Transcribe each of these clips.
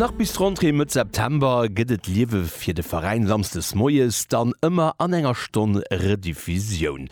Nach bis d'Rentrée Mëtt September gëtt et Liewe fir de Veräin samsdes moies dann ëmmer an enger Stonn Rediffusioun.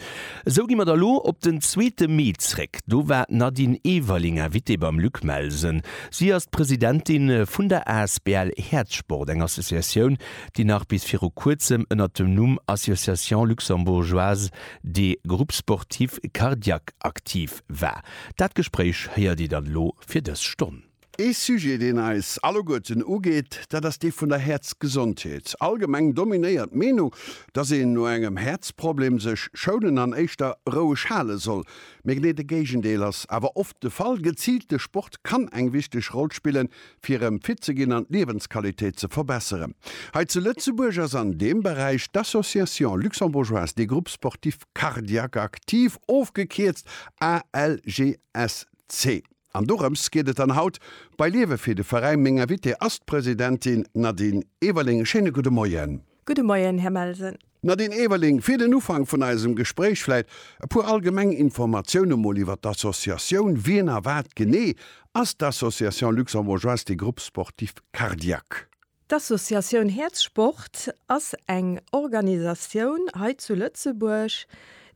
Esou gi mer da lo op den zweete Mee zréck. Do war d'Nadine Everling Invitée beim Luc Melsen. Si ass d'Presidentin vun der asbl Häerzsport, eng Associatioun, déi nach bis viru kuerzem ënnert dem Numm Association Luxembourgeoise des Groupes Sportifs Cardiaques aktiv Ekipp war. Dat Gespréich héiert Dir dann elo fir dës Stonn. Ee Sujet, deen eis alleguerten ugeet, dat ass dee vun der Häerzgesondheet. Allgemeng dominéiert d'Meenung, dass een no engem Häerzproblem sech schounen an éischter roueg hale soll. Mee genee de Géigendeel ass awer oft de Fall. Geziilte Sport kann eng wichteg Roll spillen, fir erëm fit ze ginn an d'Liewensqualitéit ze verbesseren. Hei zu Lëtzebuerg ass an deem Beräich d'Association luxembourgeoise des groupes sportifs Cardiaque active, ofgekierzt ALGSC. An dorëms geet et dann haut bei Liewe fir de Veräin. Meng Invitée ass d'Presidentin Nadine Everling. Schéine gudde Moien. Gudde Moien, Här Melsen. Nadine Everling, fir den Ufank vun eisem Gespréich vläit e puer allgemeng Informatioune mol iwwer d'Associatioun. Wien a wat genee ass d'Association luxembourgeoise des groupes sportifs cardiaques? D'Associatioun Häerzsport ass eng Organisatioun hei zu Lëtzebuerg,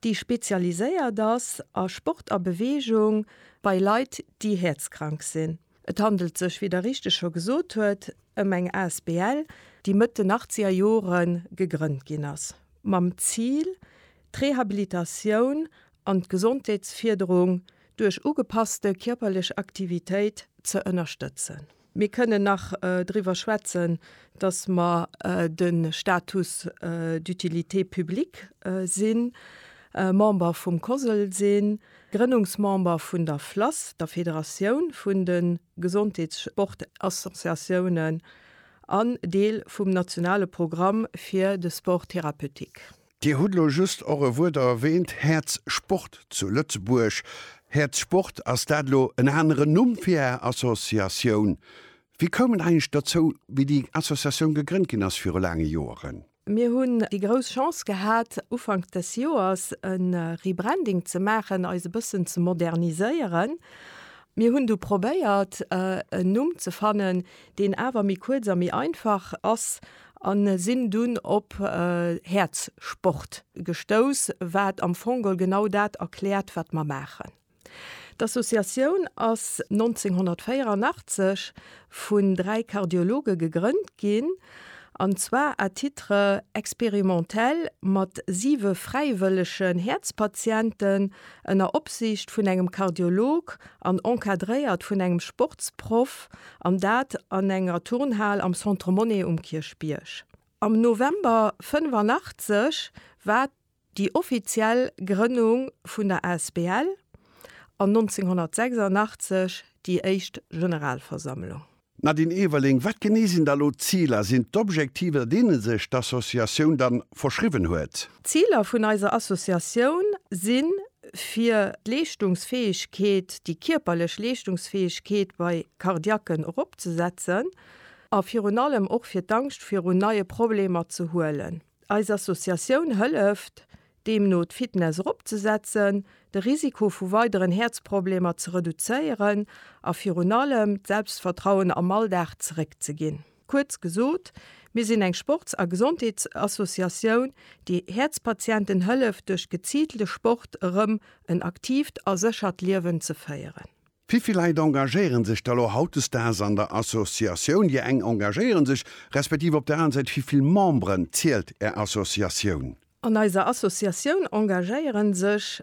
déi spezialiséiert ass a Sport a Beweegung bei Leit, déi häerzkrank sinn. Et handelt sech, wéi Der richteg scho gesot huet, ëm eng asbl, déi Mëtt den achtzeger Jore gegrënnt ginn ass, mam Zil, d'Rehabilitatioun an d'Gesondheetsfierderung duerch ugepasste kierperlech Aktivitéit ze ënnerstëtzen. Mir kënnen nach driwwer schwätzen, dass mer de Status d'utilité publique sinn, Member vum COSL sinn, Grënnungsmember vun der FLASS, der Federatioun vun de Gesondheetssportassociatiounen, an Deel vum nationale Programm fir de Sport thérapeutique. Dir hutt elo just och e Wuert erwähnt, Häerz Sport zu Lëtzebuerg. Häerz Sport, ass dat elo en aneren Numm fir Är Associatioun? Wie koum et eigentlech dozou, wéi déi Associatioun gegrënnt ginn ass viru laange Joeren? Mir hunn déi grouss Chance gehat, Ufank des Joers e Rebranding ze maachen, eis e bëssen ze moderniséieren. Mir hunn du probéiert, en Numm ze fannen, deen awer méi kuerz a méi einfach ass. an sinn dunn op Häerzsport gestouss, wat am Fongol genau dat erkläert, wat mer maachen. D'Associatioun ass 1984 vun dräi Kardiologe gegrënnt ginn, an zwar à titre expérimentel mat siwe fräiwëllegen Häerzpatienten ënner Opsiicht vun engem Kardiolog an encadréiert vun engem Sportsproff, an dat an enger Turnhal am Centre Monnet um Kierchbierg. Am November 85 war déi offiziell Grënnung vun der Asbl an 1986 déi éischt Generalversammlung. D'Nadine Everling, Wat genee sinn da elo d'Ziler? Sinn d'Objektiver deene sech d'Associatioun da verschriwwen huet? D'Ziler vun eiser Associatioun sinn, fir d'Leeschtungsfäegkeet, déi kierperlech Leeschtungsfäegkeet bei Cardiaquen eropzesetzen a virun allem och fir d'Angscht virun neie Problemer ze huelen. Eis Associatioun hëlleft deemno d'Fitness eropzesetzen, de Risiko vu weideren Häerzproblemer ze reduzéieren a virun allem d'Selbstvertrauen am Alldag zeréckzeginn. Kuerz gesot, mir sinn eng Sports a Gesondheetsassociatioun, déi Häerzpatienten hëlleft duerch geziilte Sport erëm en aktiivt a séchert Liewen ze féieren. Vivill Leit engagéieren sech da lo hautdesdaags an der Associatioun? Dir eng engagéieren sech, respektiv op der aner Säit, vivill Memberen zielt är Associatioun? An eiser Associatioun engagéieren sech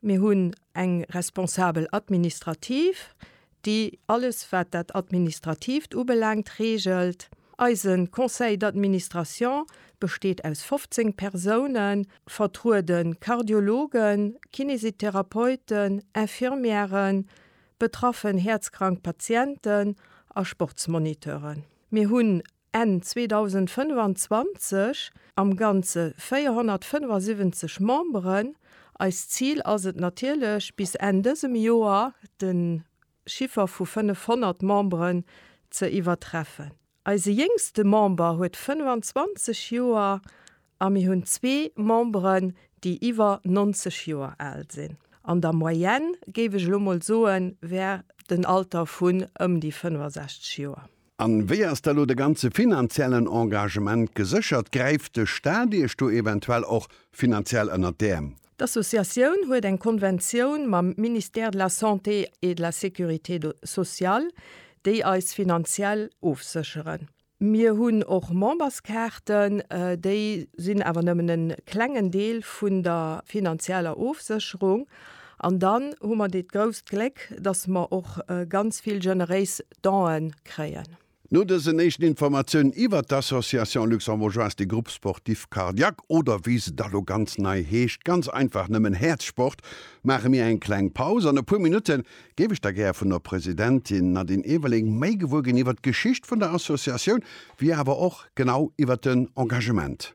Mir hunn eng Responsabel administrative, déi alles wat dat Administrativt ubelaangt reegelt. Eise Conseil d'administration besteet aus 15 Persounen, vertruede Kardiologen, Kinesitherapeuten, Infirmièren, betraffen häerzkrank Patienten a Sportsmoniteuren. Mir hunn Enn 2025 am Ganze 475 Memberen. Eist Zil ass et natierlech, bis Enn dësem Joer de Chiffer vu 500 Memberen ze iwwertreffen. Eise jéngste Member huet 25 Joer a mir hunn zwee Memberen, déi iwwer 90 Joer al sinn. An der Moyenne, géif ech elo mol soen, wär den Alter vun ëm déi 65 Joer. An wéi ass da lo de ganze finanziellen Engagement geséchert? Gräift de Staat iech do eventuell och finanziell ënnert d'Äerm? D'Associatioun huet eng Konventioun mam Ministère de la Santé et de la Sécurité sociale, déi eis finanziell ofsécheren. Mir hunn och Memberskaarten, déi sinn awer nëmmen e klengen Deel vun der finanzieller Ofsécherung. An dann hu mer dat grousst Gléck, dass mer och ganz vill generéis Donen kréien. No dësen éischten Informatiounen iwwert d'Association Luxembourgeoise des Groupes Sportifs Cardiaques, oder wéi se da lo ganz nei heescht, ganz einfach nëmmen Häerzsport, maache mir eng kleng Paus. An e puer Minutte géif ech da gär vun der Presidentin Nadine Everling méi gewuer ginn iwwert d'Geschicht vun der Associatioun, wéi awer och genau iwwert den Engagement.